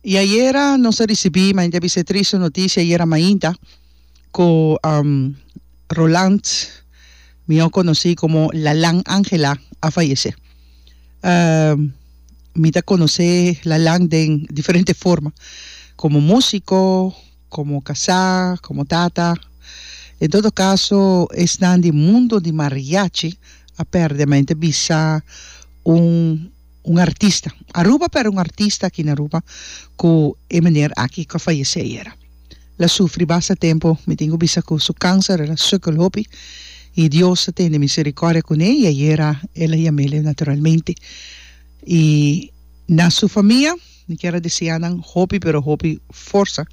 Y ayera nos a ricibi, mainta bisa e triste noticia ayera mainta, cu um, Roland, mihor conoci como Lalan Angela, a fayece. Um, mi ta conoce Lalan den diferente forma, como musico, como casá, como tata. En todo caso, esnan di mundo di mariachi a perde, mainta bisa un. un artista Aruba pero un artista aki na Aruba cu e meneer aki cu a fayece ayera la sufri basta tempo mi tin cu bisa cu su cancer el a sukkel hopi y Dios a tende misericordia cune y ayera el a yamele naturalmente y na su famia mi kier a desea nan hopi pero hopi forsa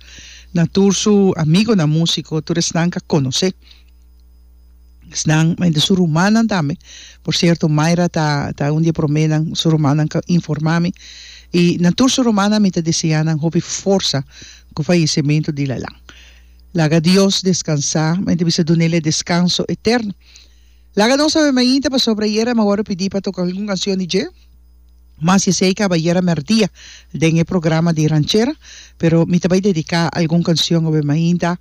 na tur su amigonan musico tur esnan cu a conoce. Esnan, ma entre su rumannan tambe, por cierto Mayra ta ta un di e promenan, su rumannan ka informa mi, y na tur su rumannan mi ta desea nan hopi forsa ku fallecemento di Lalan. Laga Dios descansa, mi ta bisa dunel e descanso eterno. Laga nos a bai mainta pasobra ayer a mi a wòrdu pidi pa toka algun cancion di dje. mas esei caba yera merdia den e programa di Ranchera, pero mi ta bay dedica algun cancion awe mainta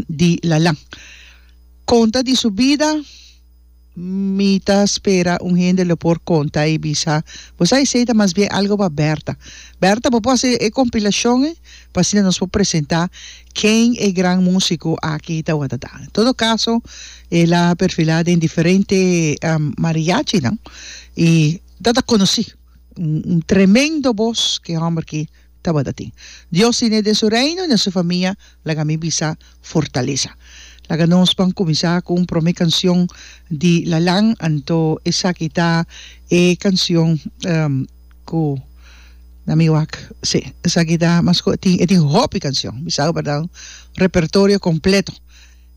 di Lalan. Conta di su bida, mi ta spera un hende lo por conta y bisa, bo sa esei ta mas bien algo pa Berta. Berta bo por haci e compilacion e pa asina nos por presenta Ken e gran musiko aki tawata ta? En todo kaso el a perfilá den diferente mariachinan i ta ta konosí. Un tremendo bos ke hòmber ki tabata tin. Dios tine den su reino i na su famia laga mi bisa fortalesa. Laga nos pan kuminsá ku un promé kansion di Lalan, anto esaki ta e kansion. Cu na mi wak, si, esaki ta mas cu e tin, e tin hopi cancion, mi sa cu patabra un repertorio completo.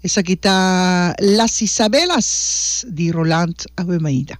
Esaki ta Las Isabelas di Roland Ahuemaida.